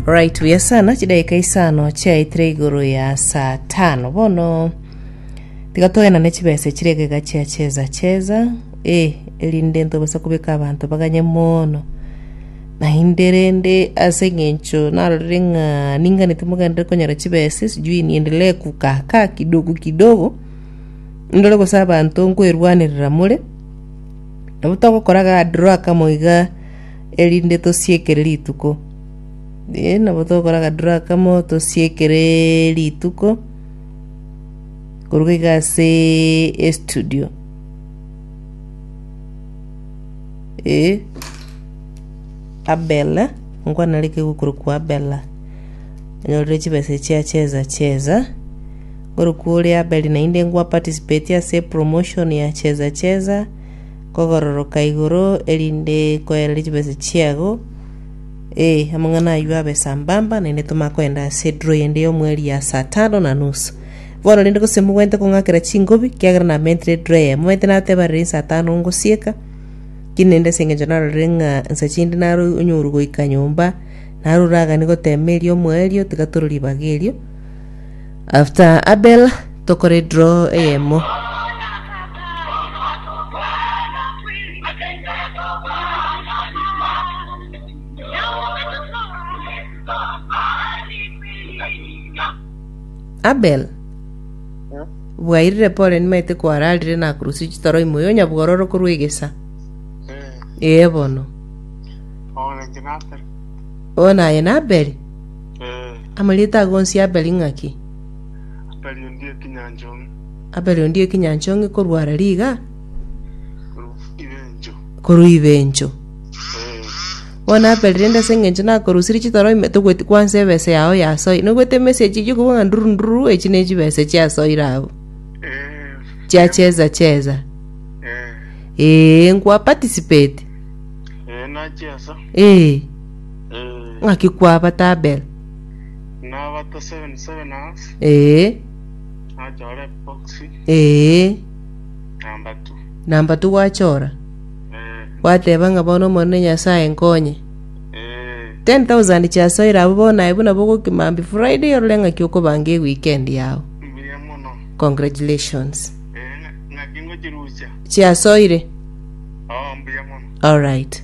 Right buya sana chidakika isano chiaitire igoro ya saa tano bono tiga toenane chibesa chire egega chia cheza cheza eh erinde ntobasa kobeka abanto baganye mono naende rende ase eng'encho narorire ng'a ningane timogenderere konyora chibesa sijui niendelee kukakaa kidogo kidogo ndore gose abanto nkwerwanerera more nabo togokora ga draw akamo iga erinde tosiekere rituko. Eh, nabo togokora akadura kamo tosiekere rituko koruga iga ase estudio. Eh, Abela, nkwana nere kegokorokwa Abela. Onyorire chibesa echi acheza cheza. Korokwa ore Abeli naende nkwa participate ase promotion ya cheza cheza. kogaroroka igoro, erinde koereria chibesa chiago, ee, amang'ana ayio abe sambamba, naende tomanye kogenda ase ediro yende y'omweri ya saa tano na nusu. Bono rende gose mogwente kong'akera chingobi, kiagera namentire ediro eyemo. Omanyete nateba riria insa tano ngosieka, kiri naende ase engencho narorire ng'a insa chinde naro onyorwe goika nyomba, naro oragani gotema erio omoerio, tiga toro ribaga erio. After Abel tokore draw eyemo. Abel bwairire pole nimaete kwararire nakurusia chitoro imo yo nyabwororo korwa egesa ee bono Oyo naye na Abel Amarieto ake onsi Abeli ng'aki? Abeli onde ekinyanchong'e. Abeli onde ekinyanchong'e korwa ara riga? Korwa ibencho. Bono Abeli rende ase engencho nakorusirie chitoro ime togweti kwansa ebesa yao yasoire. Nobwate emessage eywo okobua ng'a ndururu ndururu echi ne chibesa chiasoire abwo. Chia cheza cheza. Ee, nkwa participate. Ee. ng'aki kwabata Abel? Nabata 7 7 hours, Ee, nachora epoxy, ee. number two. Namba tu gwachora, Eh, gwateba ng'a bono Omonene Nyasae nkonye. eh, 10,000 chiasoire abwo bono aye buna bogokimambia Friday orore ng'aki okobanga eweekend yao. mbuya mono. Congratulations. Eh, ng'a- ng'aki ngochirusia. Chiasoire? Oh, mbuya mono. Alright.